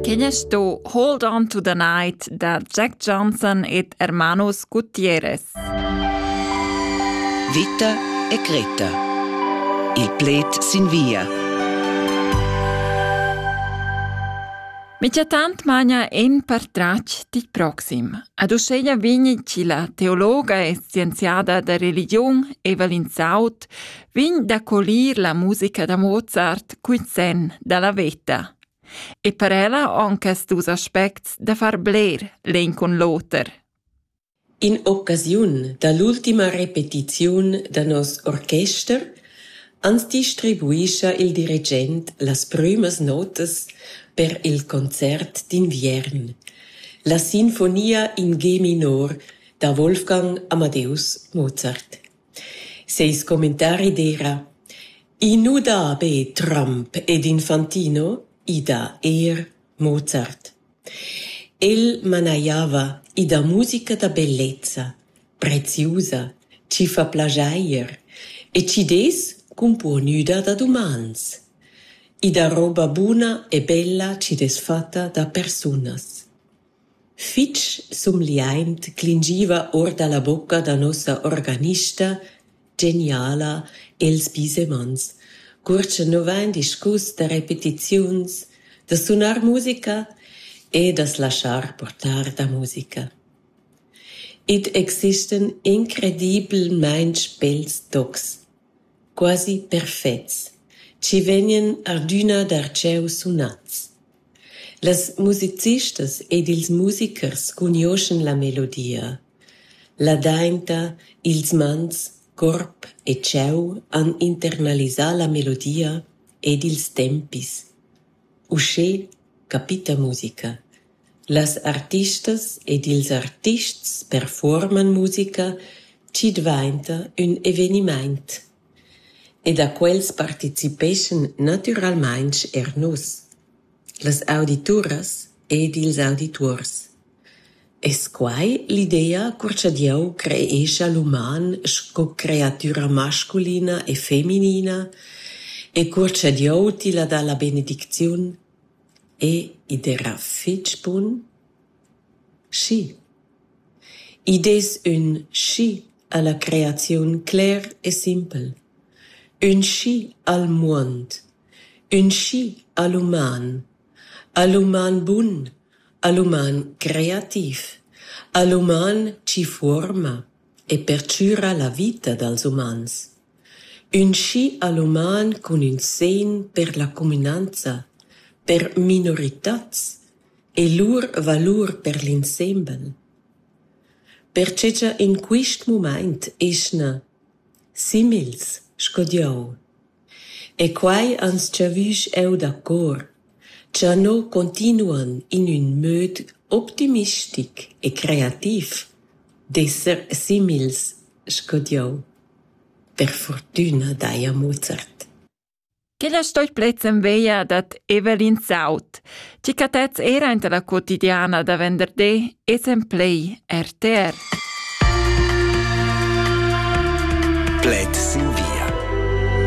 Quin es sto Hold On to the Night da Jack Johnson ed Hermanos Gutierrez. Vita e Greta. Il pled sin via. Michatant magna en per trac dit proxim. Ad uscheia vigni ci la teologa e scienziada da religion Evelyn Saut vegn da colir la musica da Mozart cun senn dalla veta e per ella on quest dus aspects da far bler l'en cun l'oter. In occasiun da l'ultima repetiziun da nos orchester ans distribuischa il dirigent las prümas notas per il concert d'inviern, la sinfonia in G minor da Wolfgang Amadeus Mozart. Seis commentari d'eira: «I nu dà be Trump ed Infantino, i dà eir Mozart». El manajava i dà musica da bellezza, preziusa, chi fa plaschair e chi dess cumpuonüda da dumans. I dà roba buna e bella chi'd es fatta da persunas. Fitg sumgliaint clingiva our da la bucca da nossa organista geniala Els Bisemans, cur cha nu vain discus da repetiziuns, da sunar musica e da's laschar portar da musica. Id existan incredibelmaing bels tocs, quasi perfets, chi vegnan adüna darcheu sunats. Las musicistas ed ils musicers cugnuoschan la melodia. Ladainta, ils mans, corp e cheu han internalisà la melodia ed ils tempis. Uschè capita musica. Las artistas ed ils artists perfuorman musica, chi dvainta ün evenimaint. E da quels participeschan natüralmaing eir nus, las audituras ed ils audituors. Es quai l'idea cur cha Dieu creescha l'uman sco creatüra masculina e feminina e cur cha Dieu tilla dà la benedicziun? E id era fich bun? Schi. Id es ün schi ha la creaziun cler e simpel: ün schi al muond, ün schi al uman, al uman bun, al uman creativ, al uman chi fuorma e perchüra la vita dals umans, ün schi al uman cun ün segn per la cumünanza, per minoritats e lur valur per l'insembel. Pertgei cha in quist mumaint eschna simils sco dieu. E quai ans giavüsch eau dacor, cha no continuan in ün möd optimistic e creativ d'esser simils sco dieu. Per furtüna daja Mozart. Quella stoit plezzen veia dad Evelyn Saut, chi cattez eira inta la quotidiana da venderdi es en plei RTR. Pled sin via